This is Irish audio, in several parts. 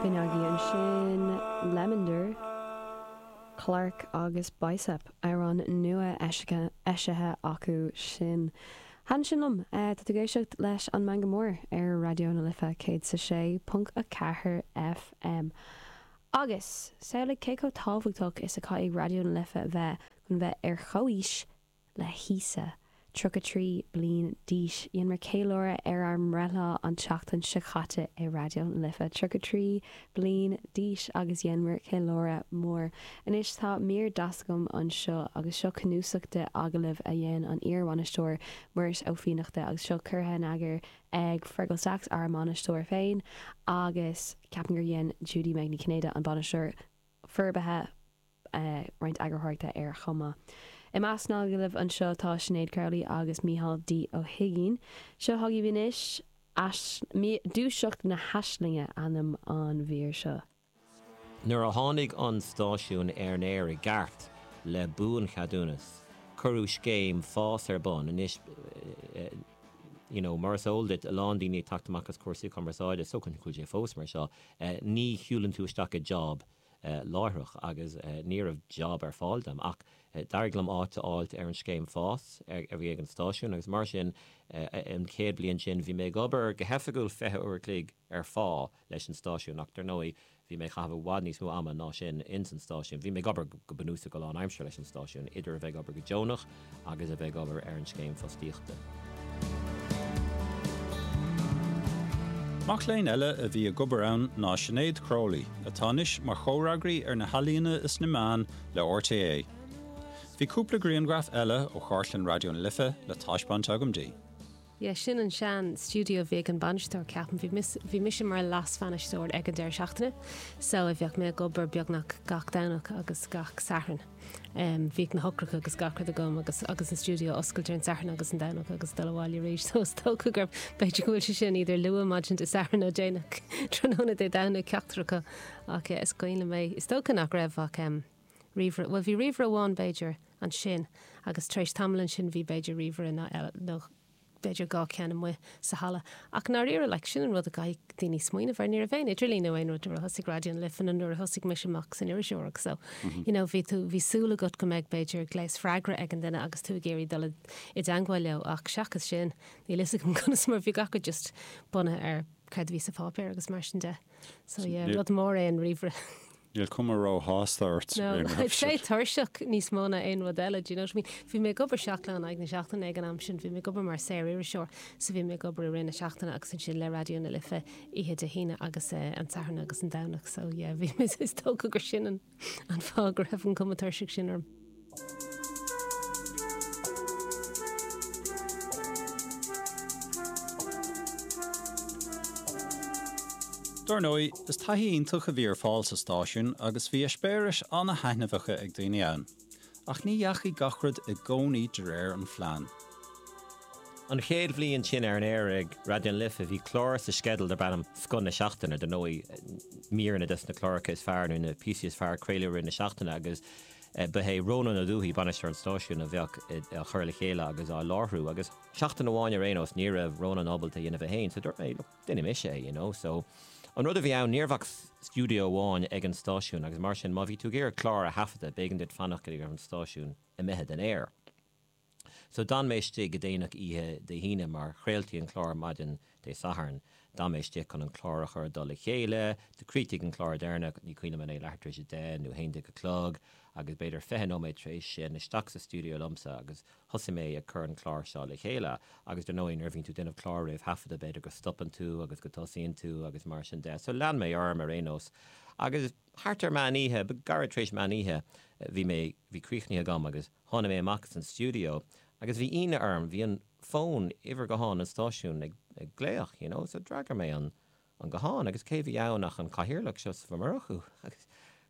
Finneagaí ansin, Lemondar, Clarke agus Bicep, amhrán nua eisithe acu sin. Thaitin sin liom é. Tá tú ag éisteacht leis an Meangadh Mór ar Raidió na Life 106.4 FM. Agus, samhlaigh cé chomh tábhachtach is a chaithfidh Raidió na Life a bheith chun bheith ar chomhaois le hÍosa, 33 bliain d'aois. Dhéanmar ceiliúradh ar ár mbreithlá an tseachtain seo caite i Raidió na Life, 33 bliain d'aois, agus dhéanmar ceiliúradh mór. Anois tá mír deas agam anseo agus seo cnuasach de agallaimh a dhein an iar-bhainisteoir Muiris Ó Fiannachta agus seo curtha in eagar ag Fearghal Saxe, ár mbainisteoir féin, agus ceapaim gur dhein Judy-Meg Ní Chinnéide, an bainisteoir forbartha, roinnt eagarthóireachta air chomh maith. I measc na n-agallamh anseo tá Sinéad Crowley agus Micheál D. Ó hUiginn. Seo chugaibh anois Dúiseacht na hAislinge, ainm an mhír seo. Nuair a tháinig an stáisiún ar an aer i gceart, le buancheadúnas, cuireadh scéim FÁS ar bun. Anois you know mar is eol duit, a lán daoine ag teacht amach as cúrsaí cumarsáide, is dócha go bhfuil sé fós mar seo, ní shiúlann tú isteach i job láithreach agus ní raibh job ar fáil dom ach d'éirigh liom áit a fháilt ar an scéim FÁS a bhí ag an stáisiún agus mar sin an chéad bliain sin bhí mé ag obair go hoifigiúil fiche uair a chloig ar phá leis an stáisiún ach dar ndóigh bhí mé ag caitheamh i bhfad níos mó ama ná sin ins an stáisiún. Bhí mé ag obair go bunúsach go lán aimsire leis an stáisiún idir a bheith ag obair go deonach agus a bheith ag obair ar an Scéim Fostaíochta. Mac léinn eile a bhí ag obair ann ná Sinéad Crowley, atá anois mar chomhfhreagraí ar na hEalaíona is na Meáin le RTÉ. Bhí cúpla grianghraf eile ó chartlann Raidió na Life le taispeáint agam di. Yeah, sin an sean stiúideo a bhí ag an bainisteoir, ceapaim. Bhí mise, bhí mise mar leas-bhainisteoir ag an deireadh seachtaine, so bhíodh mé ag obair beagnach gach Domhnach agus gach Satharn. Em, bhíodh na heochracha agus gach rud agam agus, agus an stiúideo a oscailt ar an Satharn agus an Domhnach agus dul abhaile arís, so is dócha gurb, b'fhéidir go bhfuil sé sin idir luath maidin Dé Sathairn nó déanach tráthnóna Dé Domhnaigh, ceachtar acu. Ach yeah, is cuimhin liom é. Is dócha nach raibh ach, em, Ríomhaire, bhuel bhí ríomhaire amháin b'fhéidir ansin agus tar éis tamaill ansin bhí b'fhéidir ríomhaire nó eile nó b'fhéidir dhá ceann amuigh sa halla ach i ndáiríre, like, sin an rud a gcaithfidh daoine smaoineamh air, ní raibh aon idirlíon nó aon rud nuair a thosaigh Raidió na Life nó nuair a thosaigh mise amach san iriseoireacht so, you know, bhí tú, bhí súil agat go mbeadh b'fhéidir gléas freagra ag an duine agus tú ag iarraidh dul i dteangmháil leo ach seachas sin níl 'fhios agam conas mar bhí gach rud just bunaithe ar céard a bhí sa pháipéar agus mar sin de. So yeah, rud mór é an ríomhaire. Níl cuma ró-shásta ort. No, I'd say tuirseach níos mó ná aon rud eile, do you know what I mean? Bhí mé ag obair seacht lá in aghaidh na seachtaine ag an am sin, bhí mé ag obair mar saor-iriseoir, so bhí mé ag obair i rith na seachtaine agus ansin le Raidió na Life oíche Dé hAoine agus eh an tSatharn agus an Domhnach, so yeah, bhí mé is dócha gur sin an. an fáth go raibh an cuma tuirseach sin orm. Dar ndóigh, is taithí iontach a bhí ar fáil sa stáisiún agus bhí eispéiris an-thaitneamhacha ag daoine ann. Ach ní dheachaigh gach rud i gcónaí de réir an phlean. An chéad bhliain sin ar an aer ag Raidió na Life bhí clár sa sceideal darb ainm 'Scoth na Seachtaine'. Dar ndóigh, míreanna des na cláracha is fearr nó na píosaí is fearr a craoladh i rith na seachtaine agus ba é Rónán Ó Dúthaigh, bainisteoir an stáisiúin, a bheadh á chur le chéile agus á láithriú. Agus seachtain amháin ar aon nós ní raibh Rónán ábalta é a dhéanamh é féin, so dúirt mé, Déanfaidh mise é, you know, so an rud a bhí ann, ní raibh ach stiúideo amháin ag an stáisiún agus mar sin, má bhí tú ag iarraidh clár a thaifeadadh, b'éigean duit fanacht go dtí go raibh an stáisiún imithe den aer. So d'fhan mé istigh go déanach oíche Dé hAoine mar chraoltaí an clár maidin Dé Sathairn, d'fhan mé istigh chun an clár a chur i dtoll a chéile, chríochnaigh an clár deireanach, ní cuimhin liom an é leathuair tar éis a deich nó a haon déag a chlog agus b'fhéidir fiche nóiméad tar éis sin, isteach sa stiúideo liomsa agus Thosaigh mé ag cur an clár seo le chéile agus dar ndóigh nuair a bhíonn tú ag déanamh clár réamhthaifeadta b'fhéidir go stopann tú agus go dtosaíonn tú agus mar sin de so lean mé orm ar aon nós agus thart ar meán oíche, nó gairid tar éis meán oíche bhí mé, bhí críochnaithe agam agus tháinig mé amach as an stiúideo agus bhí ionadh orm, bhí an fón, uimhir gutháin an stáisiúin ag glaoch you know so d'fhreagair mé an an guthán agus cé bhí ann ach an Cathaoirleach, Seosamh Ó Murchú. A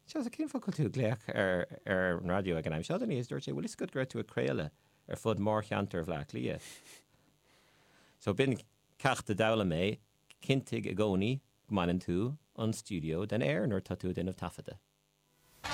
Sheosaimh, cén fáth a bhfuil tú ag glaoch ar an raidió ag an am seo den oíche agus dúirt sé, bhfuil 'fhios agat go raibh tú ag craoladh ar fud mhórcheantar Bhleá Cliath? So b'in ceacht a d'fhoghlaim mé, cinntigh i gcónaí go mbaineann tú an stiúideo den aer nuair atá tú ag déanamh taifeadta.